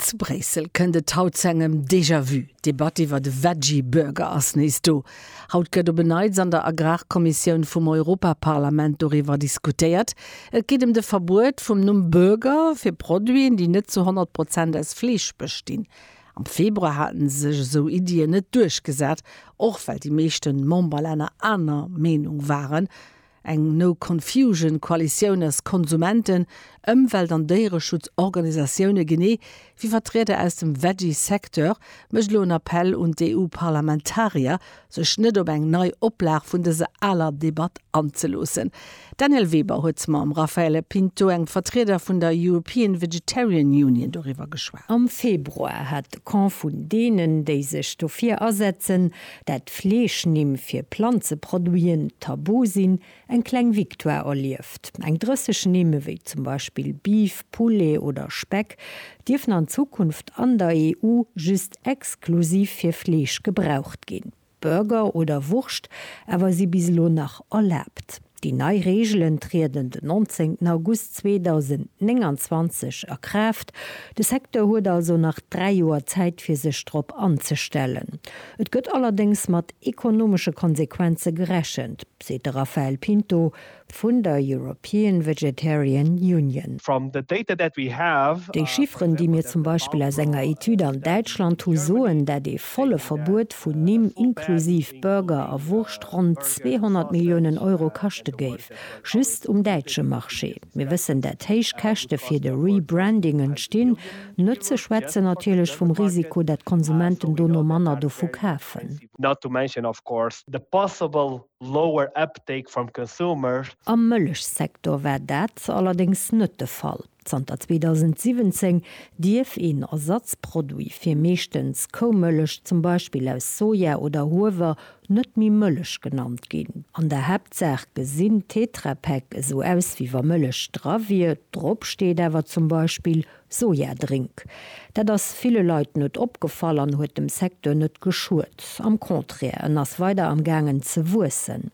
Zu Bréissel kënnt et haut zu engem Déjà-vu. D'Debatt iwwert e Veggie Burger ass nees do. Haut gëtt op en Neits an der Agrarkommissioun vum Europaparlament doriwwer diskutéiert. Et geet ëm de Verbuet vum Numm Burger fir Produiten, déi net zu 100 Prozent aus Fleesch bestinn. Am Februar haten sech esou Iddien net duerchgesat, och well déi meeschte Memberlänner aner Meenung waren. Eng No Confusion Koalitioun aus Konsumenten, Ëmwelt an Déiereschutz Organisatioune genee wéi Vertrieder aus dem Veggie Secteur mécht elo en Appell un d'EU-Parlamentarier, sech net op eng nei Oplag vun dëser aler Debatt anzeloossen. D'Danièle Weber huet mam Raffaele Pinto, engem Vertrieder vun der European Vegetarian Union, doriwwer geschwat. Am Februar hat de Camp vun deenen, déi sech dofir asetzen, dat Fleeschnimm fir Planzeproduiten tabu sinn, eng kleng Victoire erlieft. Eng 30 Nimm, ewéi zum Beispill Beef, Poulet oder Speck, dierfen an Zukunft an der EU just exklusiv fir Fleesch gebraucht ginn. Burger oder Wurscht awer si bis elo nach erlaabt. Déi nei Reegelen trieden den 19 August 2029 a Kraaft. De Secteur huet also nach dräi Joer Zäit fir sech drop anzestellen. Et gëtt allerdéngs mat ekonomesche Konsequenze gerechent, seet de Raphael Pinto vun der European Vegetarian Union. Déi Chifferen, déi mir zum Beispill aus enger Etüd an Däitschland hu soen dat ee volle Verbuet vun Nimm, inklusiv Burger a Wurscht, ronn 200 Milliounen Euro kaschte géif, just um däitsche Marché. Mir wëssen, dat héich Käschte fir de Rebranding entstinn, net ze schwätzen natierlech vum Risiko, dat d'Konsumenten dono manner dovu kafen. Am Mëllechsektor war dat allerdéngs net de Fall. Zanter 2017 dierf een Ersatzproduit fir meeschtens Koumëllech, zum Beispill aus Soja oder Huewer, net méi Mëllech genannt ginn. An der Haaptsaach gesinn Tetra Pak esou aus wéi wa Mëllech dra wier, drop steet awer zum Beispill Sojadrink. Dat ass ville Leit net opgefall an huet dem Secteur net geschuet. Am Contraire, en ass weider am gaangen ze wuessen.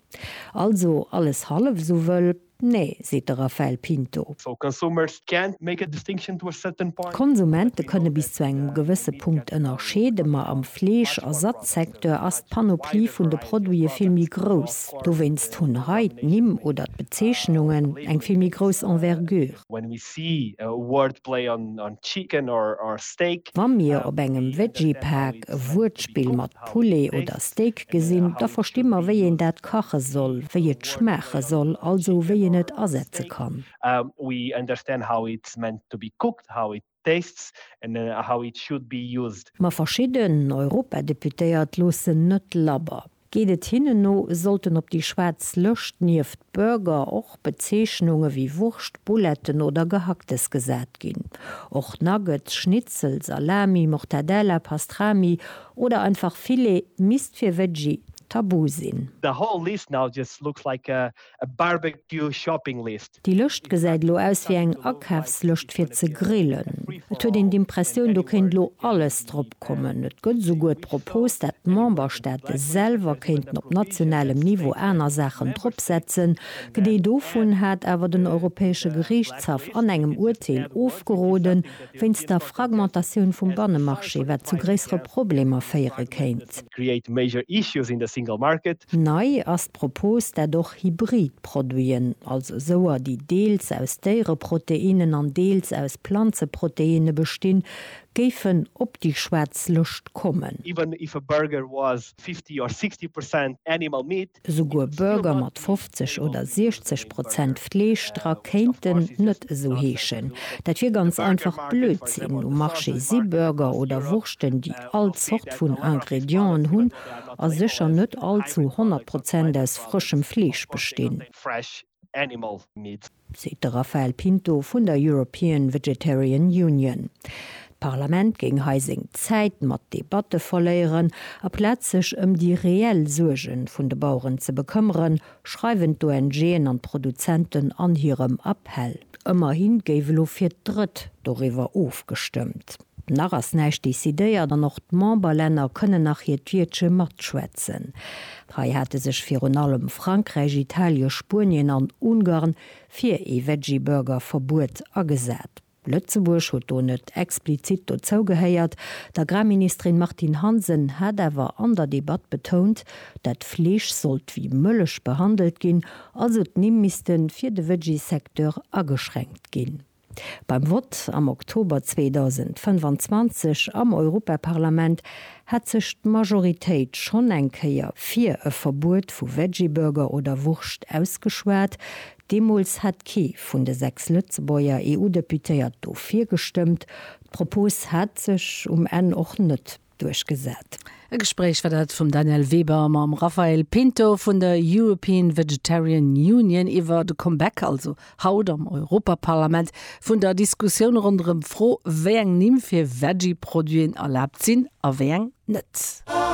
Also alles hallef esou wëll. Nee, seet de Rafael Pinto. D'Konsumente kënne bis zu engem gewësse Punkt ënnerscheeden, ma am Fleesch a Satzsecteur ass d'Panoplie vun de Produite vill méi grouss. Dowéinst hunn hei d'Nimm oder d'Bezeechnungen eng vill méi grouss Envergure. When we see a wordplay on chicken or steak. Wa mir op engem Veggie-Paak e Wuertspill mat Poulet oder Steak gesinn, da versti mer, wéi een dat kache soll, wéi et schmaache soll, also wéi een et asetze kann. We understand how it's meant to be cooked, how it tastes and how it should be used. Ma verschidden Europadeputéiert loossen net labber. Geet et hinnen no, sollten op déi schwaarz Lëscht nieft Burger och Bezeechnunge wéi Wurscht, Bouletten oder Gehacktes gesat ginn. Och Nuggets, Schnitzel, Salami, Mortadella, Pastrami oder einfach Filet misst fir Veggie tabu sinn. The whole list now just looks like a a barbecue shopping list. Déi Lëscht gesäit elo aus wéi eng Akafslëscht fir ze grillen. Et huet een d'Impressioun, do kéint elo alles drop kommen. Et gëtt esouguer d'Propos, dat d'Memberstaate selwer kéinten op nationalem Niveau aner Saachen drop setzen. D'Idee dovun hat awer den Europäesche Geriichtshaff an engem Urteel ofgeroden, wéinst der Fragmentatioun vum Bannemarché, wat zu gréissere Problemer féiere kéint. Nei ass d'Propos, dat och hybrid Produiten, also esouer, déi deels aus Déiereproteinnen an deels aus Planzeproteinne bestinn, géifen op déi schwaarz Lëscht kommen. esouguer Burger mat 50 oder 60 Prozent Fleesch dra kéinten net esou heeschen. Dat wier ganz einfach Blödsinn. Um Marché si Burger oder Wurschten, déi all Zort vun Ingredienten hunn a sécher net all zu 100 Prozent aus frëschem Fleesch bestinn. Animal Meat. Seet de Rafael Pinto vun der European Vegetarian Union. D'Parlament géing hei seng Zäit mat Debatte verléieren, aplaz sech ëm déi reell Suerge vun de Baueren ze bekëmmeren, schreiwen d'ONGen an d'Produzenten an hirem Appell. Ëmmerhi géif elo fir d'Drëtt doriwwer ofgestëmmt. Nach ass näischt decidéiert an och d'Memberlänner kënnen nach hiert Wiertche matschwätzen. Hei hate sech virun allem Frankräich, Italien, Spuenien an Ungarn fir ee Veggieburger-Verbuet agesat. Lëtzebuerg huet do net explizit dozou gehéiert. D'Agrarministerin Martine Hansen hat awer an der Debatt betount, dat Fleesch sollt wéi Mëllech behandelt ginn, also d'Nimm misste fir de Veggie-Secteur ageschränkt ginn. Beim Vott am Oktober 2025 am Europaparlament hat sech d'Majoritéit schonn eng Kéier fir e Verbuet vu Veggieburger oder Wurscht ausgeschwat. Deemools hat kee vun de sechs Lëtzebuerger EU-Deputéiert dofir gestëmmt. D'Propos hat sech um Enn och net duerchgesat. E Gespréich war dat vum Daniel Weber mam Raphael Pinto vun der European Vegetarian Union iwwer de Comeback, also haut am Europaparlament, vun der Diskussioun ronderëm d'Fro, wéi eng Nimm fir Veggie-Produiten erlaabt sinn a wéi eng net.